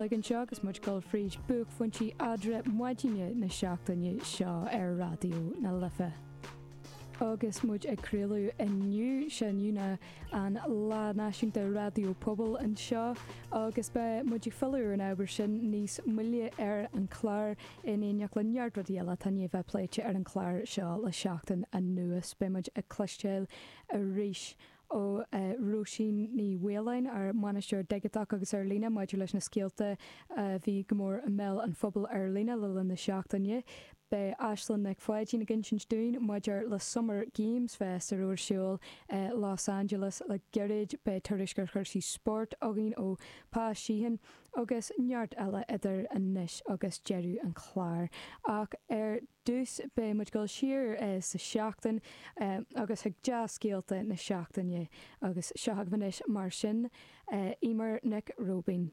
Againn anseo agus muid dul fríd buaicphointí Eadra Maidine na seachtaine seo ar Raidió na Life. Agus muid ag craoladh inniu, Dé hAoine an Lá Náisiúnta Raidió Pobail anseo agus beidh muid ag filleadh ar an ábhar sin níos moille ar an clár in éineacht le neart rudaí eile atá i ndiaidh a bheith pléite ar an clár seo le seachtain anuas. Beidh muid ag cloisteáil arís. ó Róisín Ní Mhaoláin, ár mbainisteoir digiteach agus ar líne, maidir leis na scéalta a bhí go mór i mbéal an phobail ar líne le linn na seachtaine. Beidh Aislinn Nic Pháidín ag insint dúinn maidir le Summer Games Fest a raibh ar siúl i Los Angeles le gairid, beidh tuairisc ar chúrsaí spóirt againn ó Pa Sheehan agus neart eile idir anois agus deireadh an chláir. Ach ar. dtús, beidh muid ag dul siar sa seachtain agus chuig dea-scéalta na seachtaine agus seo agaibh anois mar sin Eimear Nic Róibín.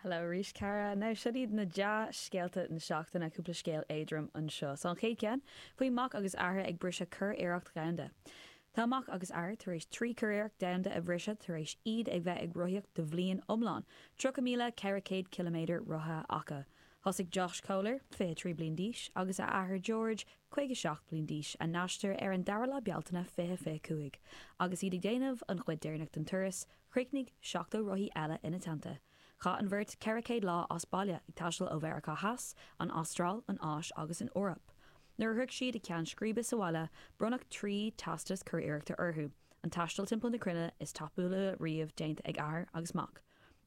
Hello arís, Cara. Now, seo iad na dea-scéalta na seachtaine, cúpla scéal éadrom anseo. So, an chéad cheann, faoi mac agus athair ag briseadh curiarracht dhomhanda. Tá mac agus athair tar éis trí churiarracht domhanda a bhriseadh tar éis iad ag bheith ag rothaíocht do bhliain iomlán, 30,400 ciliméadar rothaithe acu. Thosaigh Josh Kohler, 23 bliain d'aois, agus a athair George, 57 bliain d'aois, a n-aistear ar an 2ú lá Bealtaine 2025. Agus iad ag déanamh an chuid deireanach den turas, chruinnigh 70 rothaí eile ina dteannta. Chaith an bheirt 400 lá as baile, ag taisteal ó Mheiriceá Theas, an Astráil, an Áis agus an Eoraip. Nuair a shroich siad a gceann scríbe sa bhaile, bronnadh trí teastas curiarrachta orthu, an taisteal timpeall na cruinne is tapúla riamh déanta ag athair agus mac.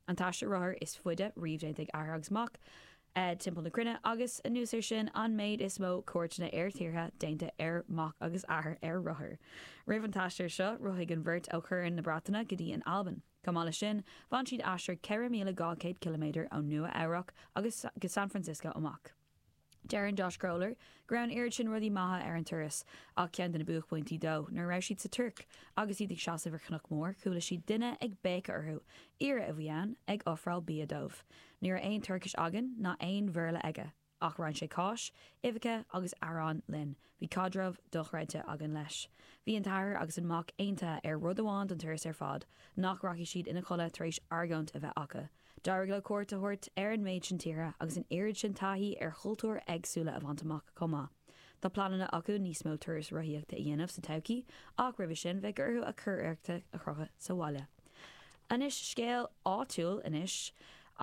An t-aistear rothair is faide riamh déanta ag athair agus mac timpeall na cruinne agus, anuas air sin, an méid is mó cuairteanna ar thíortha déanta ar mac agus athair ar rothair. Roimh an t-aistear seo, rothaigh an bheirt ó Chorn na Breataine go dtí an Albain. Chomh maith leis sin, bhain siad aistear 4,200 ciliméadar ó Nua-Eabhrac agus go San Francisco amach. Deireann Josh Kohler go raibh an oiread sin rudaí maithe ar an turas ach ceann de na buaicphointí dó nuair a raibh siad sa Tuirc agus iad ag seasamh ar chnoc mór chuala siad duine ag béiceadh orthu, aoire a bhí ann, ag ofráil bia dóibh. Ní raibh aon Tuircis againn ná aon Bhéarla aige ach roinn sé cáis, uibheacha agus arán linn. Bhí caidreamh dochreidte againn leis. Bhí an t-athair agus an mac aontaithe ar rud amháin don turas ar fad, nach rachaidh siad ina chodladh tar éis argóint a bheith acu. D'éirigh leo cuairt a thabhairt ar an méid sin tíortha agus an oiread sin taithí ar chultúir éagsúla a bhaint amach chomh maith. Tá pleananna acu níos mó turais rothaíochta a dhéanamh sa todhchaí ach roimhe sin beidh orthu a curiarrachta a chrochadh sa bhaile. Anois scéal áitiúil anois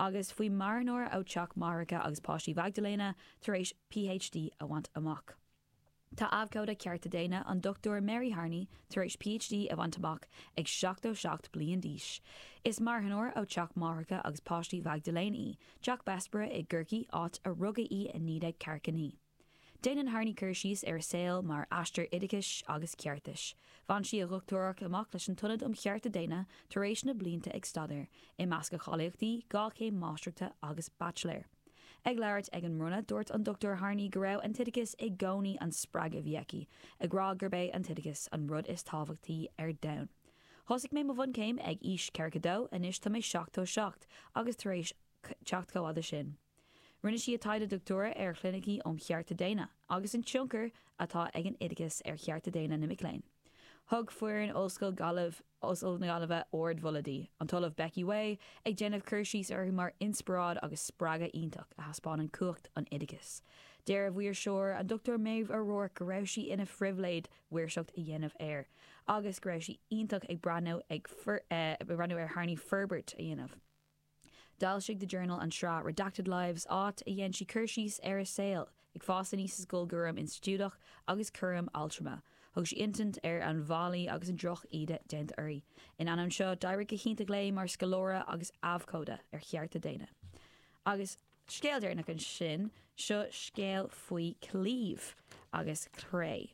agus faoi marthanóir ó teach máithreacha agus páistí Mhaigdiléana tar éis PhD a bhaint amach. Tá abhcóide cearta daonna, an Dr Mary Harney, tar éis PhD a bhaint amach ag 77 bliain d'aois. Is marthanóir ó Theach Máithreacha agus Páistí Mhaigdiléana í, Teach Bessborough i gCorcaigh, áit a rugadh í i 1949. Déanann Harney cur síos ar a saol mar aistear oideachais agus ceartais. Bhain sí a dochtúireacht amach leis an Ionad um Chearta Daonna tar éis na blianta ag staidéar, i measc a cháilíochtaí, dhá chéim máistreachta agus baitsiléir. Ag labhairt ag an mbronnadh, dúirt an Dr Harney go raibh an t-oideachas i gcónaí an spreagadh a bhí aici, ag rá gurb é an t-oideachas an rud is tábhachtaí ar domhan. Thosaigh mé mo bhunchéim ag aois 42, anois tá mé 77 agus tar éis teacht chomh fhada sin. Rinne sí a taighde dochtúra ar chlinicí um chearta daonna. agus an tionchar atá ag an oideachas ar chearta daonna na mic léinn. Thug foireann Ollscoil Ghaillimh, Ollscoil na Gaillimhe, ardmholadh di, an tOllamh Becky Whay, ag déanamh cur síos uirthi mar inspioráid agus spreagadh iontach a thaispeánann cumhacht an oideachais. Deir a maoirseoir, an Dr Maeve O'Rourke, go raibh sí ina phribhléid maoirseacht a dhéanamh air agus go raibh sí iontach ag breathnú ar Harney forbairt a dhéanamh. D'fhoilsigh The Journal an tsraith Redacted Lives áit a ndéanann sí cur síos ar a saol ag fás aníos i scoil, i gcúram institiúideach agus cúram altrama. Thug sí insint ar an bhfaillí agus an drochíde déanta uirthi. In ainneoin seo, d'éirigh go hiontach léi mar scoláire agus abhcóide ar chearta daonna. Agus. scéal deireanach ansin, seo scéal faoi chlaíomh agus cré.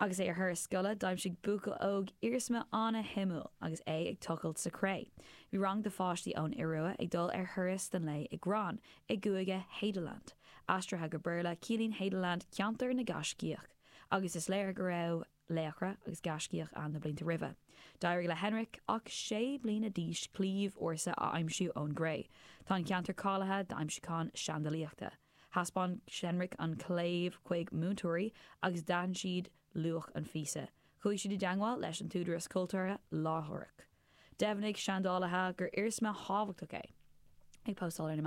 Agus é ar thuras scoile, d'aimsigh buachaill óg iarsma an-shuimiúil agus é ag tochailt sa chré. Bhí rang de pháistí ón Iorua ag dul ar thuras don lae i Gran i gcúige Hadeland. Aistrithe go Béarla, ciallaíonn Hadeland ceantar na ngaiscíoch, agus is léir go raibh laochra agus gaiscígh ann na blianta roimhe. D'éirigh le Henrik, ach sé bliana d'aois, claíomh ársa a aimsiú ón gcré. Tá an ceantar cáilithe d'aimsiúcháin seandalaíochta. Thaispeáin Henrik an claíomh chuig múinteoirí agus d'aithin siad luach an phíosa. Chuaigh siad i dteagmháil leis an t-údaras cultúrtha láithreach. Dheimhnigh seandálaithe gur iarsma thábhachtach é, ag postáil ar na meáin.